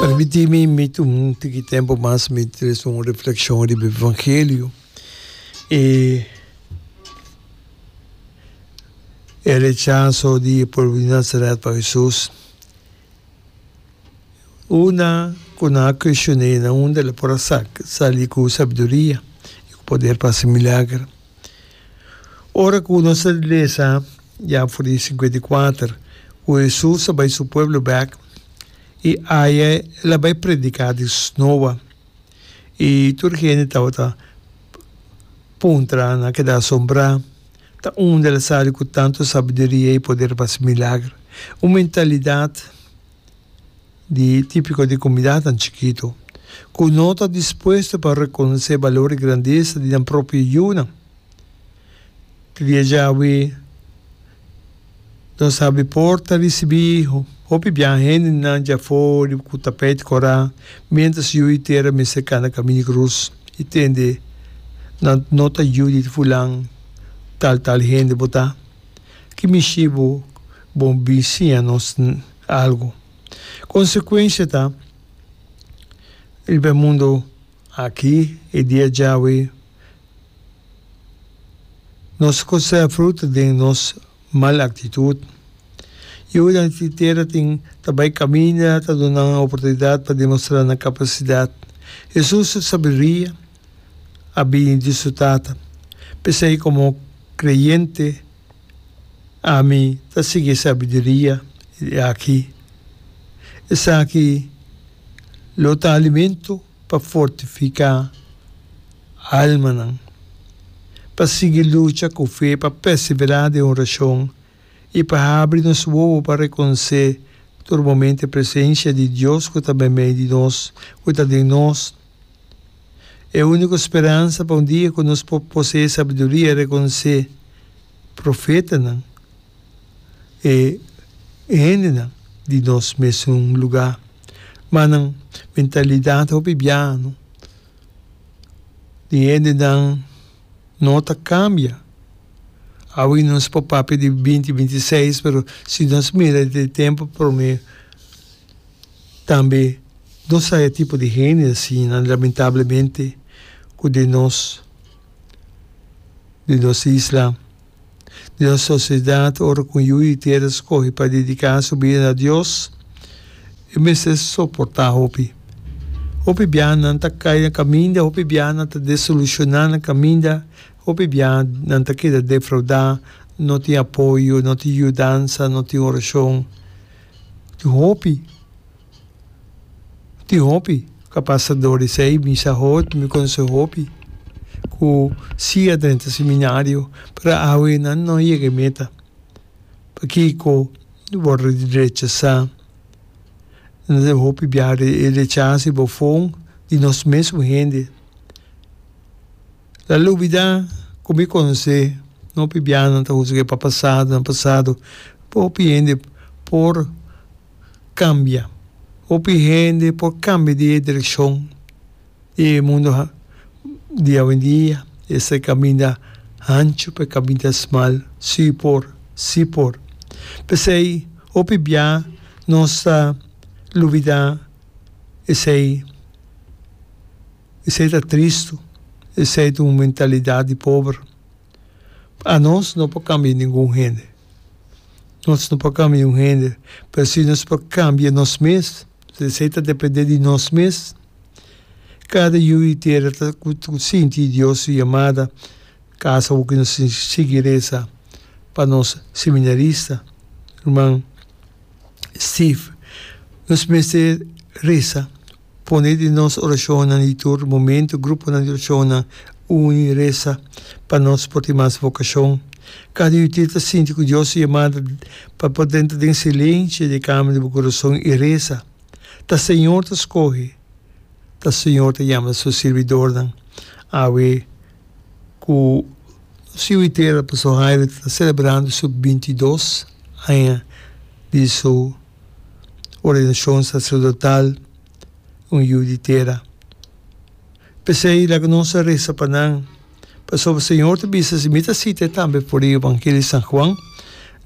Permiti mi mit un tiki tempo mas mi tres un reflexion riba e evangelio e e rechaso di e pueblo di Nazaret pa Jesus. Una cu nan a cuestion'e nan unda el a por a sali cu sabiduria y cu poder pa haci milagro. Ora ku nos ta lesa ya for di sinkuenta i kuater ku Hesus a bai su pueblo bek i aya el a bai prediká di snoa i tur hende tabata puntra, nan a keda asombrá, ta unda el a sabi ku tantu sabiduria i poder pa hasi milager? Un mentalidat di típiko di kumidanan chikitu ku no ta dispuesto pa rekonosé balor i grandesa di nan propio yunan. Di dia djawe nos a abi por ta risibí hopi biaha hendenan dja afó di ku tapèt korá miéntras yu i tera mester kana kaminda grus i tende nan nota yu di fulan tal tal hende bo ta. ki mishi bo bo bin siña nos algu. Konsekuensia ta riba e mundu aki e dia djawe nos a kosea fruta den nos mal aktitut. Yudan di tera tin ta bai kaminda, ta duna nan oportunidat pa demostrá nan kapasidat. Hesus sabiduria. a bini di su Tata. P'esei komo kreyente, ami ta sigui e sabiduria di aki. Esaki lo ta alimento pa fortifiká almanan, pa sigui lucha ku fe, pa pèsiberá den orashon i pa habri nos wowo pa rekonosé tur momentu e presensia di Dios ku ta meimei di nos, ku ta den nos. E úniko speransa pa un dia ku nos por posee sabiduria rekonosé profetanan, e hendenan di nos mesun lugá. Ma nan mentalidat hopi biaño di hendenan no ta kambia. Awe nos por papia di binti binti seis, pero si nos mira di tempu promé, Tambe nos sa e tipo di hende asinan, lamentablemente, ku den nos den nos isla, den nos sosiedat, ora ku un yu di tera skohe pa dediká su bida na Dios, e mester soportá hopi. Hopi biaha nan ta kai na kaminda, hopi biaha nan ta desolushon'á na kaminda, hopi biaha nan ta keda defraudá, no tin apoyo, no tin yudansa, no tin orashon. tin hopi, tin hopi kapasador esei mi sa hopi, mi konose hopi ku siga drenta seminario pero awe nan no yega e meta. Pakiko nan wòrdu rechasá? Nan tin hopi biaha e rechasa i bofon di nos mesun hende. La lubida ku mi konse hopi biahanan ta husga e papasado na pasado. Hopi hende por kambia. Hopi hende por kambia di e direkshon di e mundu di awendia. Esei ta e kaminda hanchu pa e kaminda smal. Si por. Si por. P'esei hopi bia nos ta lubida esei. Esei ta tristu. Esei ta un mentalidat di pober. Anos no por kambia ningun hende. Nos no por kambia un hende. Pero si nos por kambia nos mes, si esei ta depende di nos mes, kada yu i tera ta ku sinti Dios su yamada, kasa hopi nos tin sigui resa pa nos seminarista, ruman Steve. Nos mester resa. Pone di nos orashonnan di tur momentu gruponan di orashonnan uni i resa pa nos por tin mas vokashon. Kada yu tin ta sinti ku Dios su yamada pa por denta den silenshi di e kamer di bo kurason i resa. Ta Señor ta skohe, ta Señor ta yama su sirbidornan. Awe ku nos yu Itera, Pastor Haire, ta selebrando su binti i dos aña di su ordenashon saserdotal, un yu di tera. P'esei laga nos a resa pa nan, pasobra Señor ta bisa si mi ta sita e tambe for di Evangelio di San Juan,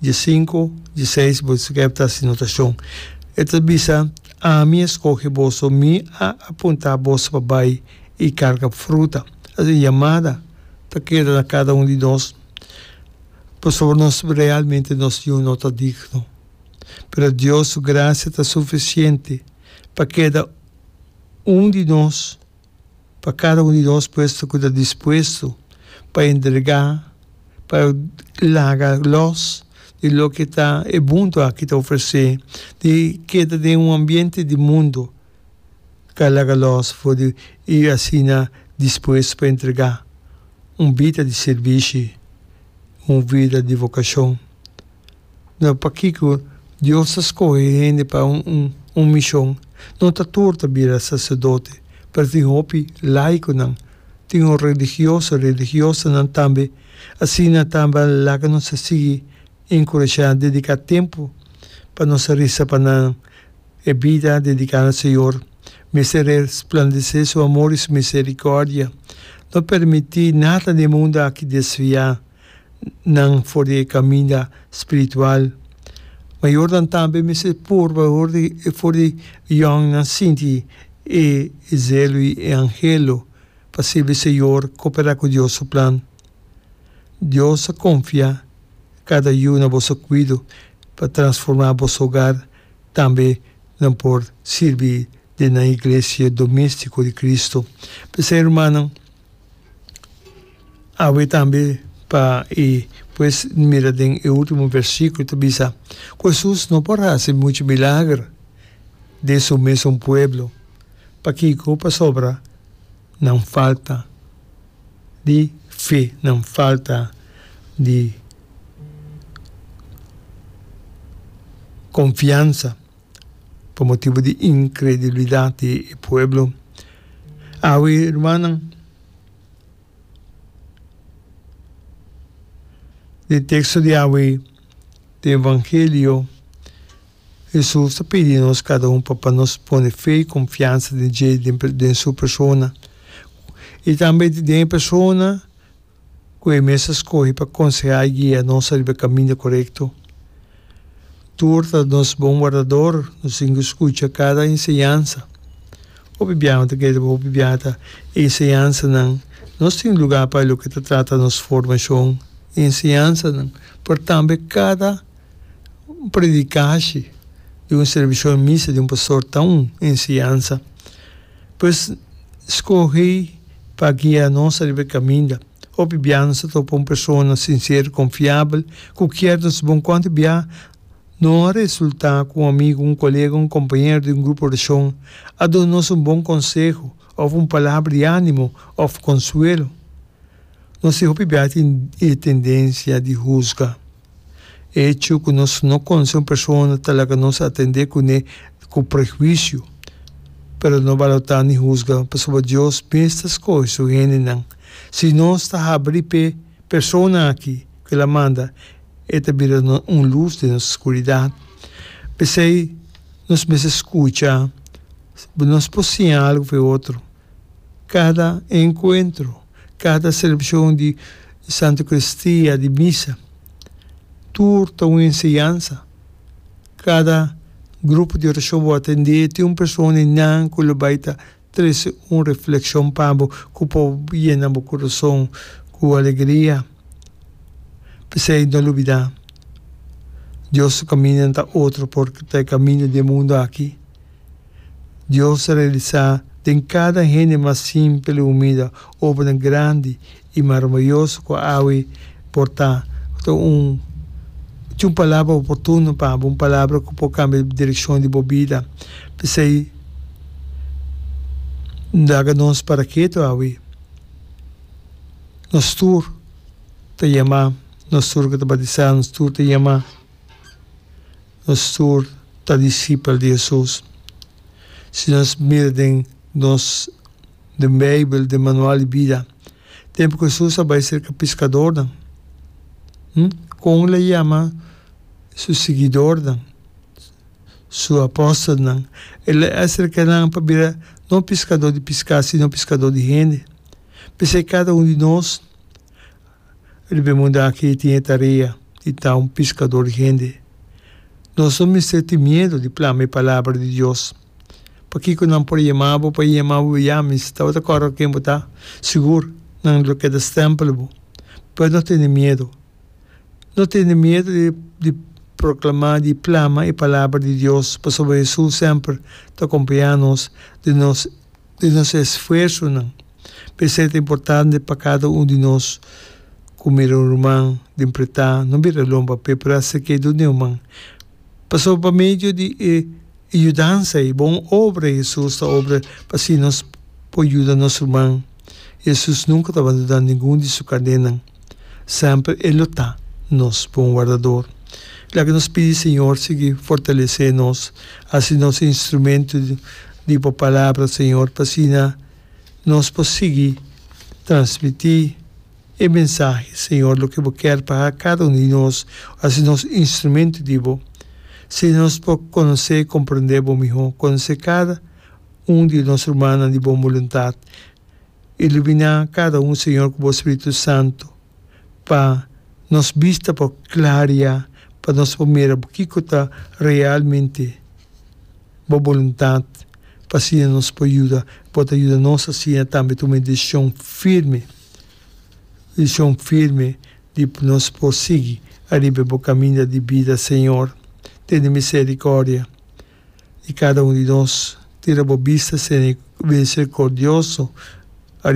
dia sinku, dia seis, bo ta keb ta haci notashon. E ta bisa, Ami a skohe boso, mi a apunta boso pa bai i karga fruta. Asina e yamada ta keda na kada un di nos, pasobra nos realmente nos yu no ta digno. pero Dios su gracia ta suficiente pa keda un di nos, pa cada un di nos puesto cu ta dispuesto pa entrega, pa laga los di loke ta e mundo aki ta ofrece, di keda den un ambiente di mundo ka laga los for di y asina dispuesto pa entrega un bida di servishi, un vida di vocacion. No pakico Dios ta scoge hende pa un mision. No ta tur ta bira sacerdote, pero tin hopi laiconan, tin un religioso, religiosanan tambe. Asina tambe a laga nos a sigui encurashá dedica tempo pa nos a risa pa nan e bida dedica na Señor. Mester resplandece su amor y su misericordia. No permiti nada den e mundo aki desvia. nan for di e kaminda spiritual. Mayornan tambe mester purba for di for di yòngnan sinti e zelu i e angelo pa sirbi Señor, koperá ku Dios su plan. Dios a konfia kada yu na boso kuido pa transformá boso hogar, tambe nan por sirbi den nan iglesia doméstiko di Kristu. P'esei, rumannan. Awe tambe pa e pues mira den e ultimo versiculo ta bisa cu Jesus no por haci mucho milager den su mesun pueblo. Pakico? Pasobra nan falta di fe, nan falta di confiansa. pa motibu di inkredulidat di e pueblo. Awe, rumannan, den e teksto di awe, den e evangelio, Hesus ta pidi nos kada un pa nos pone fe i konfiansa den dje, den su persona i tambe den e persona. ku e mes a skohe pa konsehá i guia nos riba e kaminda korekto. Tur ta nos bon Wardador, nos tin ku skucha kada enseñansa. Hopi biaha no ta kere riba hopi biaha ta e enseñansanan. Nos tin lugá pa loke ta trata nos formashon i enseñansanan, pero tambe kada un prediká hashi di un servishon misa di un pastor ta un enseñansa. Pues, skohe pa guia nos riba e kaminda. Hopi bia nos ta topa un persona sinsero i konfiabel ku kier nos bon. Kon ta bia no a resultá ku un amigu, un kolega, un kompañero di un grupo orashon a duna nos un bon konseho òf un palabra di ánimo òf konsuelo? Nos tin hopi bia tin e tendensia di husga. E hecho cu nos no conoce un persona ta laga nos a atende cu ne cu prehuicio. Pero no balota ni huzga, pasobra Dios mes ta scoge su hendenan. Si nos ta habri p'e persona aki cu el a manda, e ta bira un luz den nos scuridad. P'esey, nos mester scucha. Nos por siña algo p'e otro, Cada encuentro, cada celebracion di Santa Eucaristia, di Misa, tur ta un enseñansa. Cada grupo di oracion bo a tende tin un persona di nan cu lo bay ta trece un reflexion pa bo cu por yena bo corazon cu alegria. P'esey no lubida, Dios su caminda no ta otro por ta e caminda di e mundo aki. Dios a realisá den kada hende mas simpel i humilde obranan grandi i maramayoso ku awe por ta. Ta un tin un palabra oportuno pa bo, un palabra ku por kambia direkshon di bo bida. P'esei N laga nos paraketo awe. Nos tur ta yamá, nos tur ku ta batisá, nos tur ta yamá. nos tur ta disipel di Hesus. Si nos mira den nos den Beibel, den manual di bida, tempu ku Hesus a bai serka piskadornan, hm, kon el a yama su siguidornan, su apòstelnan? El a aserka nan pa bira no piskador di piská, sino piskador di hende. P'esei kada un di nos Riba e mundu aki tin e tarea di ta un piskador di hende. Nos no mester tin miedu di plama e palabra di Dios. Pakiko nan por a yama bo pa e yama bo Yami si tabata kòrda ken bo ta? Sigur, nan lo keda stèmpel bo. Pero no tene miedu. No tene miedu di proklamá, di plama e palabra di Dios, pasobra Hesus semper ta kompañá nos den nos di nos esfuersonan. P'esei ta importante pa kada un di nos ku mira un ruman den pretá no bira lon papia pero hasi ke duna e human. Pasobra pa medio di e yudansa ei, bon obra Hesus ta obra pa asina nos por yuda nos ruman. Hesus nunka ta bandoná ningun di su kadenan. Semper e lo ta nos Bon Wardador. Leke nos pidi Señor sigui fortalece nos, haci nos instrumento di bo Palabra, Señor, p'asina nos por sigui transmiti e mensahe, Señor, loke bo kier pa haga cada uno di nos, haci nos instrumento di bo, asina nos por conoce y comprende bo miho, conoce cada un di nos rumannan di bon boluntad. Ilumina cada un, Señor, cu bo Spiritu Santo, pa nos bista por claria, pa nos por mira kico ta realmente bo boluntad, pa asina nos por yuda. Bo ta yuda nos asina tambe tuma e decision firme, decision firme di nos por sigui ariba e bo caminda di bida, Señor. Tene misericordia. di cada un di nos. Tira bo bista, Señor, y misericordioso.